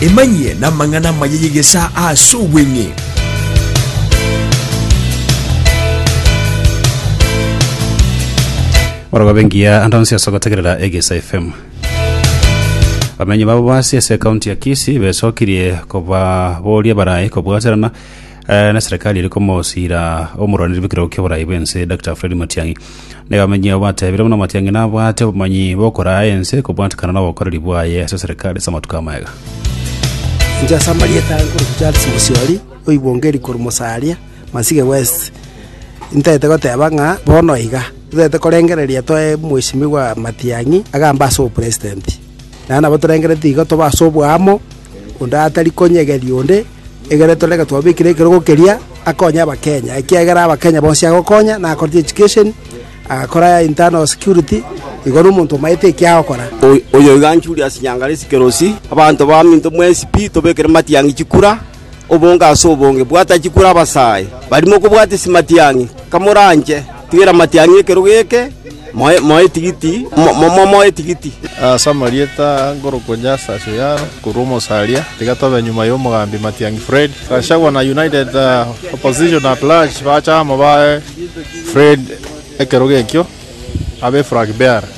emanyie n'amang'ana amaya y'egesaa ase obweng'e orogobe ngiya ande onsi ase ogotegerera egesa fm bamenyi babo basi ase ekaunti ya kisi besokirie kobaboria barae kobwaterana Eh, na serikali iri komosira omorwaniri bw'ekerogo ki'oborai bw'ense Dr. Fred Matiang'i nigo amenyire obatebire buna Matiang'i nabwate obomanyi bw'okoraa ense kobwatekana n'obokoreri bwaye ase serikali ase amatuko amaya. Inche ase amarieta aye nkorokwa Charles Mosiori, oibongeri korwa Mosaria, Masige West. Ntaete goteba ng'a bono iga, totaete korengereria toe Mheshimiwa Matiang'i agambe ase obopresidenti. Naende nabo torengereretie igo tobe ase oboamo, onde atari konyegeria onde, egere torenge twabekire ekerogo keria, akonye Abakenya, ekiagera Abakenya bonsi agokonya, na akorete education, agakora internal security, igo nomonto omaete eki agokora. Oyoiga Julius Nyangalesi Kerosi, abanto baminto mwensi pi tobekere matiang'i chikura. obonge ase obonge, bwatachia kura abasae baria mokobwatisia matiang'i. Kamoranche, tigera amatiang'i ekerogo eke, moe, moe etigiti, mo, mo, mo, moe etigiti. Ase amarieta aa ngorokoa Justus Oyaro korwa Omosaria, tiga tobe nyuma y'omogambi Matiang'i Fred. Gachagua na United Opposition at Large bache amo bae Fred ekerogo ekio abe flag bearer.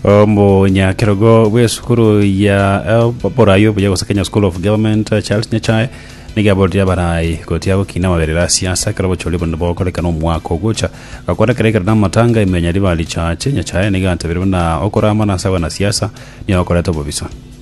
omonyakerogo bw'esukuru ya eh, borayi obuya gose kenya school of government eh, charles nyachae nigo aborire abarayi gotiga gokina amaberero a siasa ekero obochori buna bogokorekana omwaka ogocha gakorekera ekero namatanga imenya riba richache nyachae nigo antabire buna okorama na ase abanasiasa nigo okoreta obobisa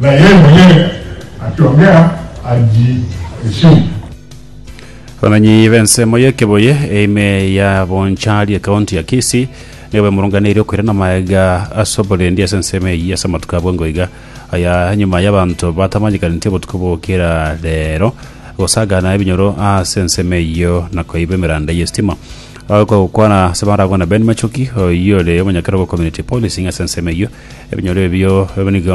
Na ye monyene achiong'ea arie esiri. Abamenyi b'ensemo ya Ekebuye eime ya Bonchari ekaunti ya Kisii nigo bemurunganeirie okoirana amaega ase oborendi ase ensemo eyio ase amatuko abwango iga aya nyuma y'abanto batamanyekaneti obotuko bw'okera rero gosagana ebinyoro ase ensemo eyio na koiba emeranda y'estima. Abagokwana ase barabwo na Ben Machoki oyio ore omonyakerogo community policing ase ensemo eyio Ebinyoro ebio nigo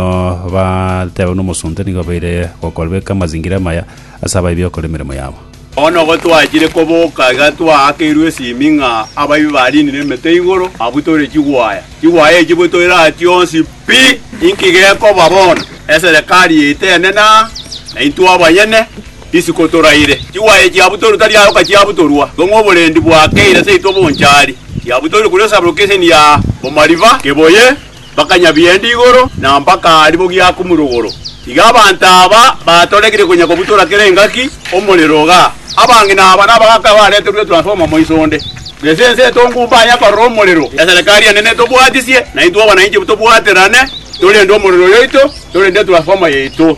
batebeirwe nomosunte nigo babeire gokora, beka amazingira amaya ase abaibia gokora emeremo yabo. Bono igo twachire koboka iga twaakeirwe esimi ng'a abaibi bariinire emete igoro abwo tore chigwaya. Chigwaya echi bwe toire aa chionsi pi, inki gekoba bono? Eserekari yaito enene aa, na intwe abanyene? Isiko toraire, chigwaye chiabu toru tari aye okachiabutorwa, tong'we oborendi bwakeire seito bonchari, chiabutorire kuri esabero k'eseni ya omariba, keboye mpaka Nyabiende igoro, na mpaka aria bogiakumure igoro. Iga abanto aba batorekirie konya kobutora kera engaki omorero iga. Abang'ina aba nabagaaka bareterwe etransformer moiso onde, na ase ense etongu mbanye akorora omorero. Eserekari enene tobwatisie, naintwe abananchi tobwaterane, torende omorero oyoito, torende etransformer yaito.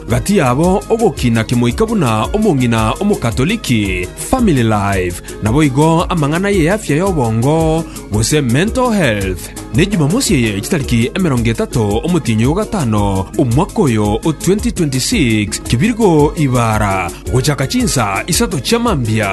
Gati yabo ogokina kimoika buna omong'ina Omokatoliki, family life, naboigo amang'ana y'eafya y'obongo, gose mental health. Ne Jumamosi eye chitariki emerongo etato omotienyi o gatano omwaka oyo o 2026, kebirgo ibara, gochaka chinsa isato chia mambia.